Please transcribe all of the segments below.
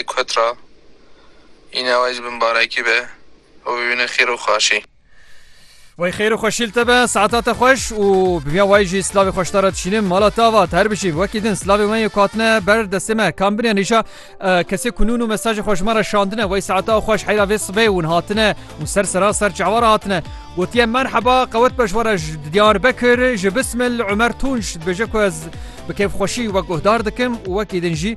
Li Kutra îne ew ê ji bin barekî be û bibîne xêr û xaşî. Wey xêr û xweşî li te be, saeta te xweş û bi vîya wayî jî silavê xweş te re dişînim. Mala te avat, her bijî. Wekî din silavê me yê ku hatine ber destê me, kam bine nîşa kesê ku nûn û mesajê xwe ji me re şandine. Wey saeta ew xweş heyra vê sibê ûn hatine û ser sera ser çawa re hatine. Gotiye merheba, qewet be ji we re ji Diyarbekir, ji Bismil, Umer Tunç dibêje ku ez bi kêfxweşî wek guhdar dikim û wekî din jî.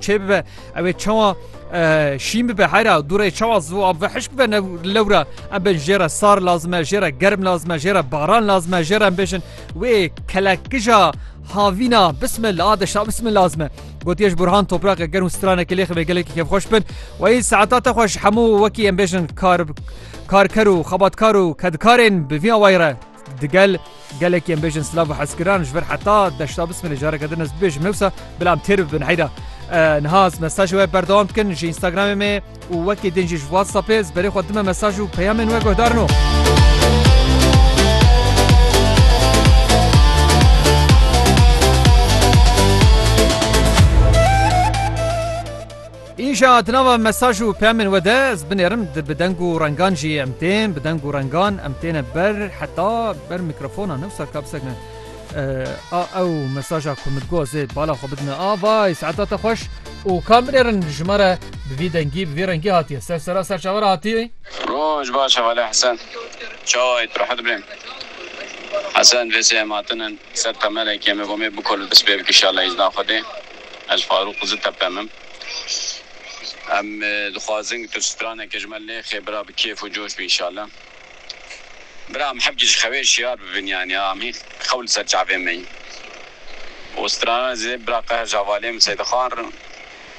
Çê bibe ew ê çawa şîn bibe hera dûrê çawa zû ab ve hişk bibe lewra em bên jê re sar lazim e jê re germ lazim e jê re baran lazim e jê re em bêjin wê kelekija havîna bisme la deşa bisme lazim e gotiye ji burhan topraqe germ û stranekê lê xivê gelekî kevxweş bin wayî saeta te xweş hemû wekî em bêjin kar karker û xebatkar û kedkarên bi vî awayî re Digel gelekî em bêjin silav û hezkiran ji vir heta deşta bismilê careke din ez bibêjim newsa bila em têr bibin heyda niha ez mesaj we berdewam dikin ji Instagramê me û wekî din jî ji WhatsAppê ez berê xwe dime mesaj û peyamên we guhdarin û Îja di nava mesaj û peyamên we de ez binêrim di bi deng û rengan jî em tên bi deng û rengan em têne ber heta ber mîkrofonan wisa ka bisek ne a ew mesaja ku min got ez ê bala xwe bidime a vay saeta te xweş û ka binêrin ji me re bi vî dengî bi vî rengî hatiye ser sera serçavera hatiye. Roj baş hevalê Hesen çawa yî tu rehet bê Hesen vê sê em hatinin ser temelekê me got mê bikol û dest pê bike îşallah îzna xwedê. Ez Farûq Zi Tepem im. Em dixwazin ku tu straneke ji me lê xê bira bi kêf û coş bî înşallah. Bira em hevcî ji xewê şiyar bibin yanî em hîn xew li ser çavê me yî û strana zê bira qeh ji hevalê min Seydixan re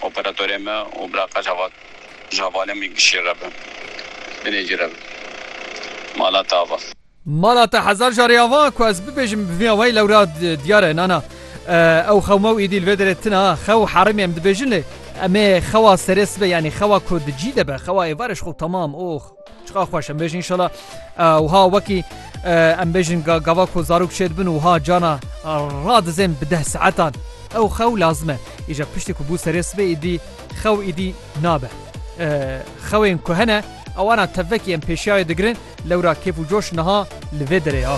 operatorê me û bira qeh ji hevalê min Gişî re be. Binê cî re be. Mala tava. Mala te hezar carê ava ku ez bibêjim bi vî awayî lewra diyar e nana. Ew xewma û êdî li vê derê tune a. Xew û herêmê em dibêjin lê em ê xewa serê sibe yanî xewa ku di cî de be xewa êvarê ji xwe temam oh çiqas xweş em bêjin înşela wiha wekî em bêjin gava ku zarok şêd bin û wiha cana radizên bi deh saetan ew xew lazim e. Îja piştî ku bû serê sibê êdî xew îdî nabe. Xewên ku hene ewana tevvekî em pêşiyayê digirin lewra kêf û coş niha li vê derê ya.